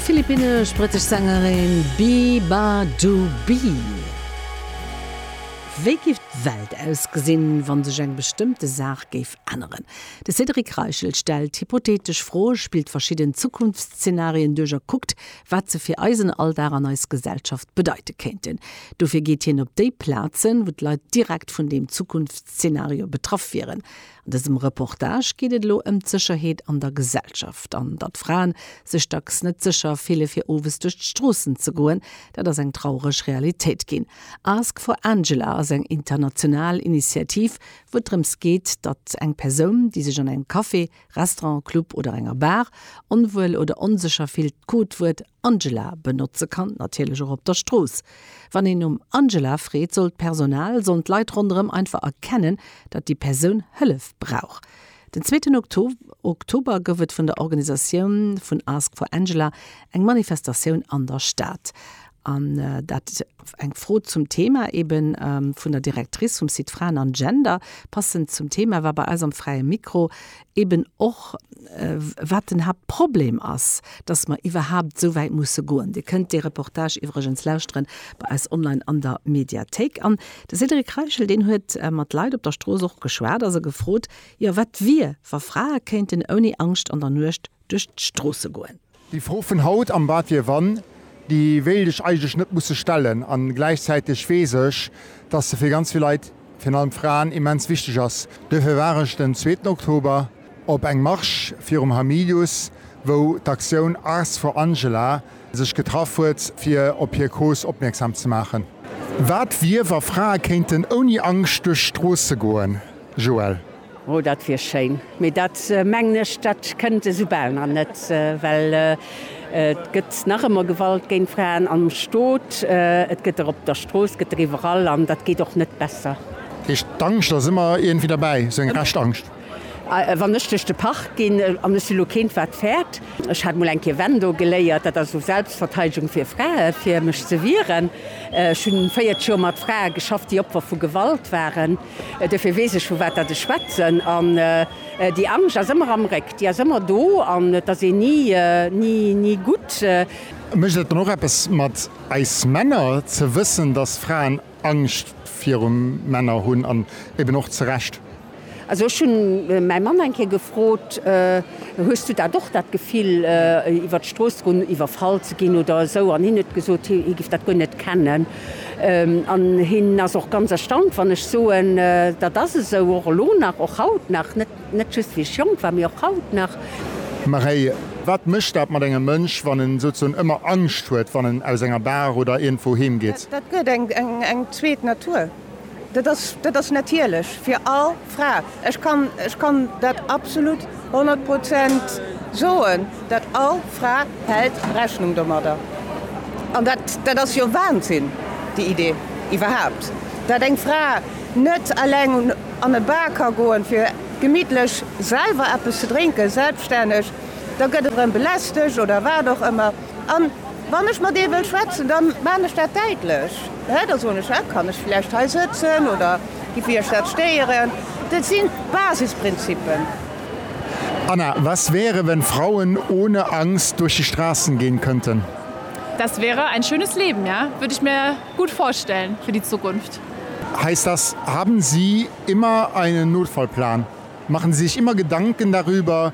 Philippinnesch-brittesch Sängerin Biba Dubi. Wéi géif d'Welt ausgesinn, wann sech eng bestëmmte Saach géif änneren? De Cédric Reichel stellt hypothetesch Froe, spillt verschidden Zukunftszeenarien duerch a kuckt, wat se fir eisen Alldag an eis Gesellschaft bedeite kéinten. Dofir geet hien op déi Plazen, wou d'Leit direkt vun deem Zukunftszeenario betraff wieren. An dësem Reportage geet et elo ëm d'Sécherheet an der Gesellschaft an datt Fraen sech dacks net sécher fille fir owes duerch d'Stroossen ze goen. Dat ass eng traureg Realitéit ginn. Ask for Angela ass eng international Initiativ, wou et drëms geet, datt eng Persoun, déi sech an engem Café, Restaurant, Club oder enger Bar onwuel oder onsécher fillt, d'Codewuert, Angela benotze kann, natierlech och op der Strooss. Wann een nom Angela freet, soll d'Personal, sollen d'Leit ronderëm einfach erkennen, datt déi Persoun Hëllef brauch. Den zweeten Oktober gouf et vun der Organisatioun vun Ask for Angela eng Manifestatioun an der Stad. An dat war eng Fro zum Thema ebe vun der Directrice vum Site Fraen an Gender. Passend zum Thema war bei eis am Fräie Mikro eben och wat den Haaptproblem ass, dass mer iwwerhaupt esou wäit musse goen. Dir kënnt dee Reportage iwwregens lauschteren bei eis online an der Mediathéik. An de Cédric Reichel, deen huet mat Leit op der Strooss och geschwat a se gefrot, jo, wat wier, wa Frae kéinten ouni Angscht an der Nuecht duerch d'Stroosse goen. Déi Fro vun haut am Wat wier wann, déi wéilt ech eigentlech net musse stellen. A gläichzäiteg weess ech, dass se fir ganz vill Leit, virun allem Fraen, immens wichteg ass. Duerfir war ech den zweeten Oktober op engem Marsch virum Hamilius, wou d'Aktioun Ars for Angela sech getraff huet, fir op hir Cause opmierksam ze maachen. Wat wier, wa Frae kéinten ouni Angscht duerch d'Stroosse goen? Joëlle. Oh, dat wier schéin, mee dat mengen ech, dat kënnt esou bal nach net, well et gëtt nach ëmmer Gewalt géint Fraen am Stot, et gëtt der op der Strooss, gëtt der iwwerall, an dat geet och net besser. Heescht, d'Angscht ass ëmmer iergendwéi derbäi, esou eng Rescht-Angscht? Wann ech duerch de Park ginn, an ech si lo keent wat fäert, ech hat mol eng Kéier Wendo geléiert, dat ass esou Selbstverteidegung fir Frae fir mech ze wieren, ech hunn 40 Joer mat Frae geschafft, déi Opfer vu Gewalt waren. Duerfir weess ech, vu wat dat ech schwätzen. An déi Angscht ass ëmmer am Réck, déi ass ëmmer do an et ass een ni, ni gutt. Mécht et dann och eppes mat eis Männer, ze wëssen, dass Fraen Angscht viru Männer hunn an eben och zu Recht? Also ech hunn mäi Mann eng Kéier gefrot, Hues du dat och, dat Gefill, iwwert d'Strooss ze goen, iwwerfall ze ginn oder esou? An hien huet gesot, hie géif dat guer net kennen. An hien ass och ganz erstaunt, wann ech soen, dat ass esou, och elo nach, och haut nach, net just wéi ech jonk war, mee och haut nach. Maréi, Wat mécht dat mat engem Mënsch, wann en souzesoen ëmmer Angscht huet, wann en aus enger Bar oder iergendwou heem geet? Dat gëtt eng zweet Natur. Dat ass, dat ass natierlech fir all Fra. Ech kann, ech kann dat absolut honnert Prozent soen, dat all Fra hält Rechnung domadder. An dat, dat ass jo Wahnsinn, déi Idee iwwerhaupt, dat eng Fra net eleng un, an e Bar ka goen, fir gemittlech selwer eppes ze drénken, selbststänneg. Da gëtt erëm belästegt oder wat och ëmmer. A wann ech mat ee wëll schwätzen, da maan ech dat däitlech. Hä? Da soen ech, Hä? Kann ech vläicht hei sëtzen oder giff Iech dat stéieren? Dat sinn d'Basisprinzippen. Anna, Was wäre, wenn Frauen ohne Angst durch die Straßen gehen könnten? Das wäre ein schönes Leben, ja. Würde ich mir gut vorstellen für die Zukunft. Heißt das, haben Sie immer einen Notfallplan? Machen Sie sich immer Gedanken darüber,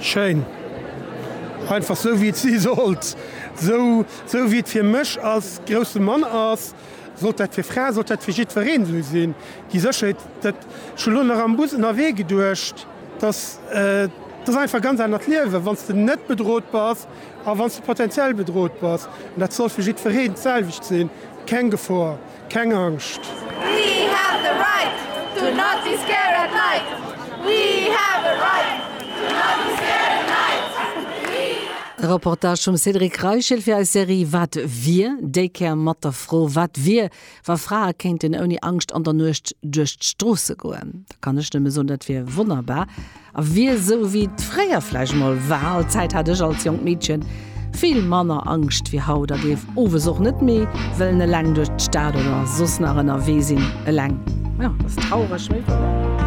Schéin. Einfach sou wéi et si sollt. Sou sou wéi et fir mech als grousse Mann ass, sollt dat fir Fraen, sollt dat fir jiddwereen sou sinn. Déi Sécherheet, dat, ech hunn elo nach am Bus ënnerwee geduecht, dass, dat ass einfach e ganz anert Liewen, wann s de net bedrot bass a wann s de potentiell bedrot bass. Dat soll fir jiddwereen d'selwecht sinn, keng Gefor. Keng Angscht! We have the right to not be scared at night We have a right to not be scared at night We have. E Reportage vum Cédric Reichel fir eis Serie Wat wier? Déi Kéier mat der Fro, Wat wier, wa Frae kéinten ouni Angscht an der Nuecht duerch d'Stroosse goen? Da kann ech nëmme soen, Dat wier wonnerbar! A wier esou wéi et fréier vläicht emol war, all d'Zäit hat ech als jonkt Meedchen vill manner Angscht wéi haut a géif owes och net méi wëllen eleng duerch d'Stad oder soss nach ënnerwee sinn. Eleng, jo, ass traureg, mee wouer.